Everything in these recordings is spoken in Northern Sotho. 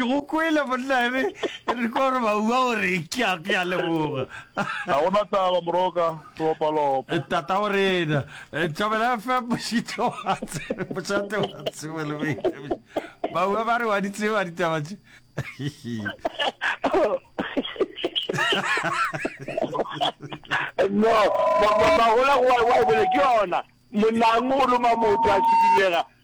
go kwele monna ebe e re kwa gore baua gore ke a ke a leboga ga gona taba moroka topalopo eh, tata o rena eh, tšabela fe mošito wa mošate wa tsebo le boithabišo baua ba re wa di tseba ditaba tše no magola wa bele ke yona monang o loma motho a šidilega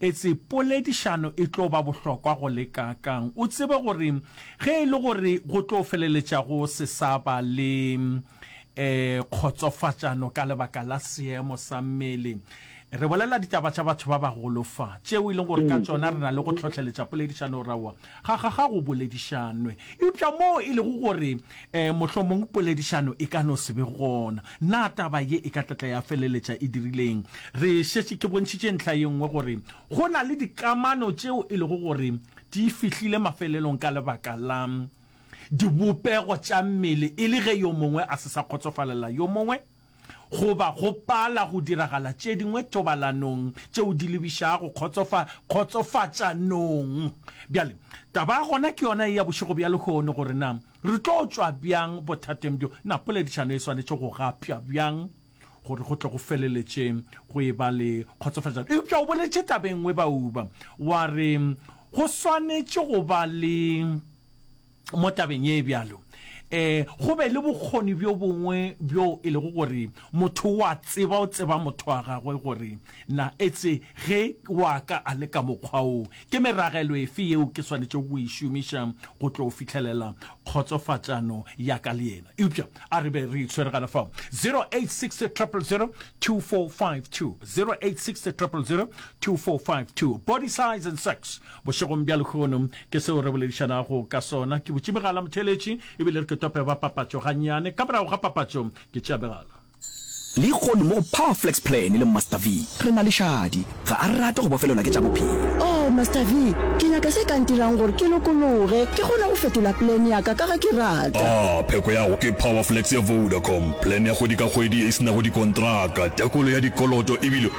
Etse poledišano e tlo ba bohlokwa go le kaakang! O tsebe gore ge e le gore go tlo feleletša go se sa ba le kgotsofatšano ka lebaka la seemo sa mmele, re bolela ditaba tša batho ba bagolo fa, tšeo e lego gore ka tšona re na le go hlohleletša poledišano. Aowa, Ga, ga, ga go boledišanwe. Eupša moo e lego gore e, mohlomong poledišano e ka no se be gona, na taba ye e ka tlatla ya feleletša e dirile eng? Re šetše, ke bontšhitše ntlha ye nngwe gore go na le dikamano tšeo e lego gore di fihlile mafelelong ka lebaka la dibopego tša mmele, e le ge yo mongwe a se sa kgotsofalela yo mongwe. goba go pala go diragala tše dingwe thobalanong tšeo di lebišago kgotsofa, kgotsofatšanong. Bjale, taba ya gona ke yona ye ya bošego bja lehono, gore na re tlo tšwa bjang bothateng bjo, na poledišano e swanetše go gapša bjang gore go tle go feleletše go e-ba le kgotsofatšano. Eupša o boletše taba e nngwe, Bauba, wa re go swanetše go ba le mo tabeng ye e bjalo, e go be le bokgoni bjo bongwe bjo e lego gore motho o a tseba, o tseba motho wa gagwe gore na etse ge wa ka a le ka mokgwa wo, ke meragelo efe yeo ke swanetšego go e šomiša go tlo fihlelela kgotsofatšano ya ka le yena. Eupša a re be re itshwere gana fao. 086000024520 086000024520 Body size and sex Bošegong bja lehono, ke seo re boledišanago ka sona. Ke butše megala, motheeletši, e bile re ke tope ba papatšo gannyane. Ka morago ga papatšo, ke tšea megala. Lehono mo go Power Flex Plan le Master V, re na le šadi. Ga a rate go bofelelwa ke tša bophelo. Oh, Master V, ke nyaka se ka ntirang gore ke lokologe, ke kgone go fetola plan ya ka, ka ge ke rata. Ah, pheko ya go ke Power Flex ya Vodacom. Plan ya kgwedi ka kgwedi e se nago dikontraka, tekolo ya dikoloto e bile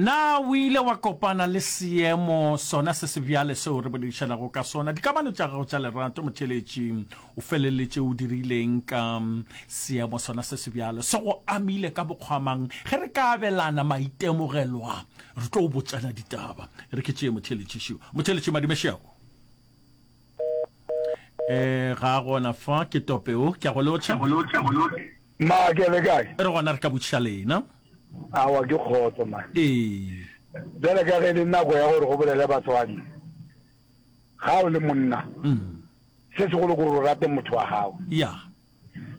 Na o ile wa kopana le seemo sona se se bjale seo re boledišanago ka sona? Dikamano tša gago tša lerato, motheeletši, o feleletše o dirileng ka seemo sona se se bjalo? Se go amile ka mokgwa mang? Ge re ka abelana maitemogelo a, re tlo botšana ditaba. E re ke tšee, motheeletši Šiwa. Motheeletši Madime Šiago. Eh, ga a gona fa ke tope o ke a go lotšha ma ke le kae re gona re ka botšiša lena awa ke kgotso ma ee bjale ka ge le nako ya gore go bolele batswadi ga o le monna mm. se segolo gore o rate motho wa gago ya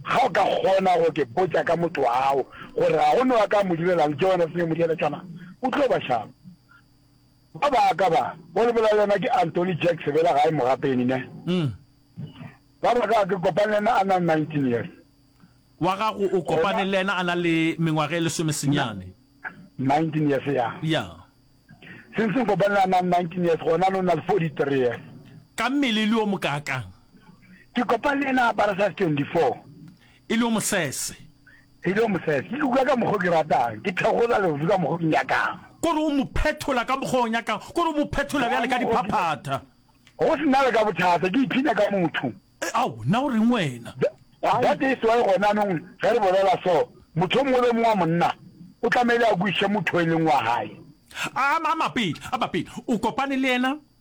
ga o ka kgona go ke botsa ka motho wa gago gore ga go ne wa ka mo direlang ke yone senge mo direletšana o tlo ba šaba Ba baka ba, bo lebela le yena ke Anthony Jack Sebela gae Mogapeni ne. Ba baka ke kopane le yena a na le 19 years. Wa gago o kopane le yena a na le mengwaga e lesome senyane. 19 years ya. Ya. Since nkopane le a na le 19 years gona no na le 43 years. Ka mmele e le o mokaakang? Ke kopane le yena a apara size 24. E lego mosese. E lego mosese. Ke luka ka mokgwa o ke ratang. Ke thegola leoto ka mokgwa o ke nyakang. Ko re o mo phethola ka mokgwa o nyakang. Ko re o mo phethola bjale ka diphaphatha. Go se na le ka bothata. Ke ipshina ka motho. Ao, na o reng wena? That is why gonanong ge re bolela so, motho o mongwe le o mongwe wa monna o tlamehile a kwešiše motho o e leng wa gae. A mapele, a mapele. O kopane le yena